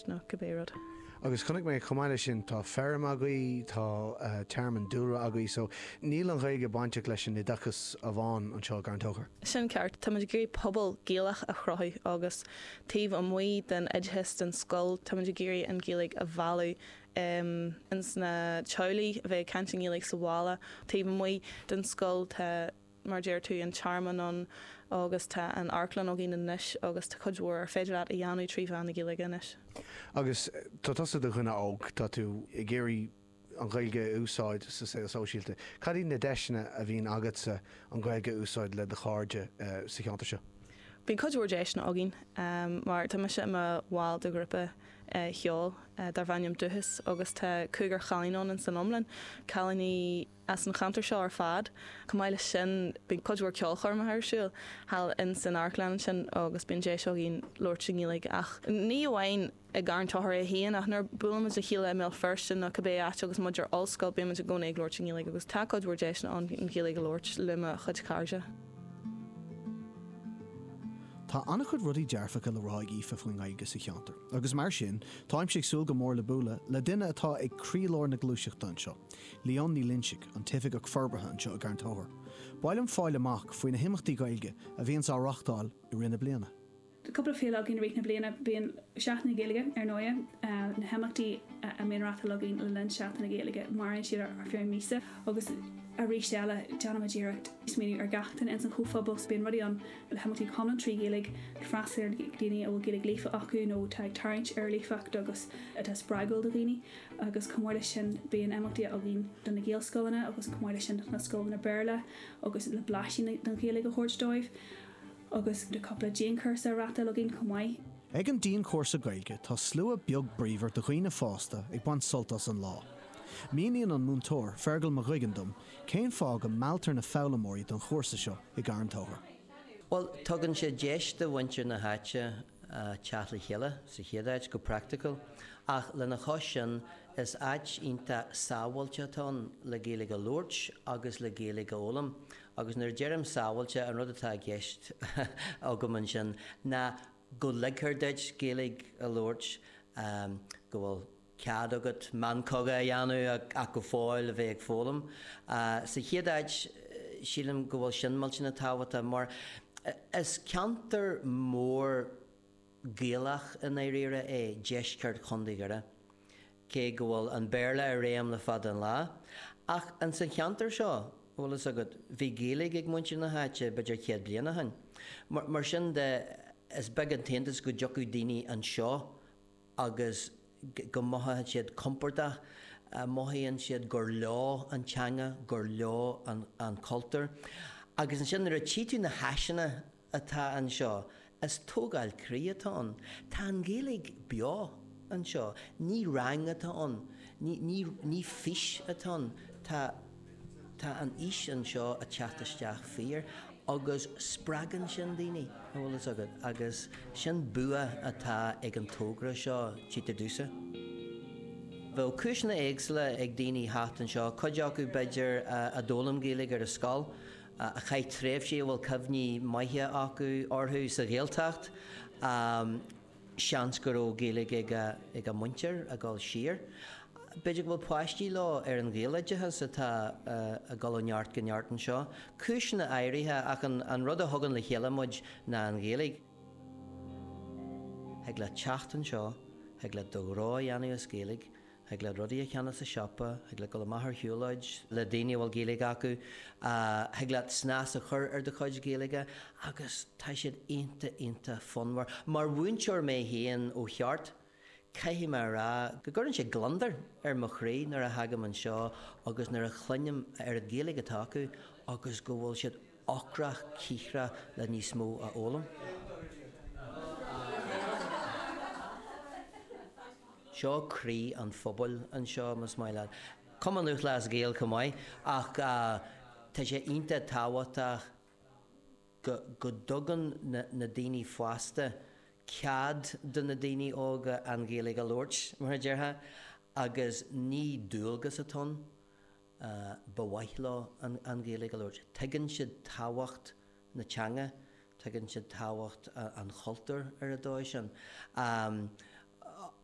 nó cibé rud. Agus chonaic mé chomh maith leis sin, tá feirm agaibh, tá tearmann dúlra agaibh, so níl an Ghaeilge bainteach leis an oideachas amháin anseo i gCarn Tóchair. Sin ceart. Táimid ag iarraidh pobal Gaelach a chruthú agus taobh amuigh den oideachas, den scoil, táimid ag iarraidh an Ghaeilge a mhealladh ins na teaghlaigh, a bheith ag caint i nGaeilge sa bhaile, taobh amuigh den scoil, tá. mar deir tú, an tearmann ann agus tá an amharclann againn anois agus tá cuid mhór ar féidir leat a dhéanamh trí mheán na Gaeilge anois. Agus tá tusa i do dhuine óg, tá tú ag iarraidh an Ghaeilge a úsáid sa saol sóisialta. Cad iad na deiseanna a bhíonn agatsa an Ghaeilge a úsáid le do chairde sa cheantar seo? Bíonn cuid mhór deiseanna againn mar tá mise i mo bhall de ghrúpa cheoil darbh ainm Dúchas agus tá cúigear cailín ann san iomlán, cailíní as an cheantar seo ar fad. Chomh maith leis sin bíonn cuid mhór ceolchoirmeacha ar siúl thall in san amharclann ansin agus bíonn deis againn labhairt i nGaeilge ach ní amháin i gCarn Tochair é féin ach nuair a buailimid le chéile i mBéal Feirste nó cibé áit agus muid ar ollscoil bímid i gcónaí ag labhairt i nGaeilge agus tá cuid mhór deiseanna ann an Ghaeilge a labhairt le mo chuid cairde. Tá an-chuid rudaí dearfacha le rá ag Aoife faoin nGaeilge sa cheantar agus mar sin táimse ag súil go mór le bualadh le duine atá ag croílár na gluaiseachta anseo. Leonne Ní Loinsigh, an tOifigeach Forbartha anseo i gCarn Tóchair. B'áil liom fáil amach faoi na himeachtaí Gaeilge a bhíonns á reáchtáil i rith na bliana. Tá cúpla féile againn i rith na bliana. Bíonn Seachtain na Gaeilge, ar ndóigh. Na himeachtaí a mbíonn reáchtáil againn le linn Seachtain na Gaeilge, maireann siad ar feadh míosa agus aríst eile, déanaimid iarracht smaoineamh ar gach duine ins an chomhphobal so bíonn rudaí ann le himeachtaí go hiomlán trí Ghaeilge, ag freastal ar dhaoine a bhfuil Gaeilge líofa acu nó atá ag tarraingt ar líofacht agus atá spreagúil do dhaoine. Agus chomh maith leis sin, bíonn imeachtaí againn do na Gaelscoileanna agus chomh maith leis sin do na scoileanna Béarla agus le blaisín den Ghaeilge a thabhairt dóibh. Agus tá cúpla dianchúrsa á reáchtáil againn chomh maith. Ag an dianchúrsa Gaeilge tá slua beag bríomhar de dhaoine fásta ag baint sult as an lá. Míníonn an múinteoir, Fergal Mag Uiginn dom cén fáth go mealltar na foghlaimeoirí don chúrsa seo i gCarn Tóchair. Bhuel, tugann sé deis do mhuintir na háite teacht le chéile sa chéad áit go praiticiúil ach lena chois sin is áit iontach sábháilte atá ann le Gaeilge a labhairt agus le Gaeilge a fhoghlaim agus nuair a deirim sábháilte an rud atá i gceist agam ansin ná go ligfear duit Gaeilge a labhairt go bhfuil cead agat meancoga a dhéanamh ach go fóill a bheith ag foghlaim. Sa chéad áit, sílim go bhfuil sin millteanach tábhachtach mar is ceantar mór Gaelach i ndáiríre é deisceart Chontae Dhoire, cé go bhfuil an Béarla i réim le fada an lá. Ach in san cheantar seo, bhfuil fhios agat, bhí Gaeilge ag muintir na háite b'fhéidir céad bliain ó shin. Mar sin de, is beag an t-iontas go dtiocfadh daoine anseo agus go mothaíonn siad compordach, mothaíonn siad gur leo an teanga, gur leo an cultúr. Agus ansin nuair a tchí tú na háiseanna atá anseo, is tógáil croí atá ann. Tá an Ghaeilge beo anseo. Ní rang atá ann, ní fís atá ann, tá. Tá an fhís anseo ag teacht isteach fíor agus spreagann sin daoine, an bhfuil fhios agat, agus sin bua atá ag an tógra seo Teach an Dúchais. Bheadh cúiseanna éagsúla ag daoine theacht anseo, cuid acu b'fhéidir a d'fhoghlaim Gaeilge ar an scoil, a chaith tréimhsí a bhfuil cuimhní maithe acu orthu sa Ghaeltacht, Seans go raibh Gaeilge ag a muintir ag dul siar. B'fhéidir go bhfuil páistí leo ar an Ghaeloideachas atá ag dul ó neart go neart anseo. Cúiseanna áirithe ach an rud a thugann le chéile muid ná an Ghaeilge. Thig leat teacht anseo, thig leat do ghnó a dhéanamh as Gaeilge, thig leat rudaí a cheannach sa siopa, thig leat dul amach ar shiúlóid le daoine a bhfuil Gaeilge acu, thig leat snas a chur ar do chuid Gaeilge agus tá siad iontach iontach fonnmhar. Mar mhúinteoir mé féin ó cheart, caithfidh mé a rá go gcuireann sé gliondar ar mo chroí nuair a thagaim anseo agus nuair a chluinim a oiread Gaeilge atá acu agus go bhfuil siad ocrach cíocrach le níos mó a fhoghlaim. Seo croí an phobail anseo, más maith leat,. Cumann Lúthchleas Gael chomh maith ach tá sé iontach tábhachtach go dtugann na daoine fásta cead do na daoine óga an Ghaeilge a labhairt, mar a déarfá, agus ní dualgas atá ann. ba mhaith leo an Ghaeilge a labhairt. Tuigeann siad tábhacht na teanga, tuigeann siad tábhacht an chultúir ar an dóigh sin.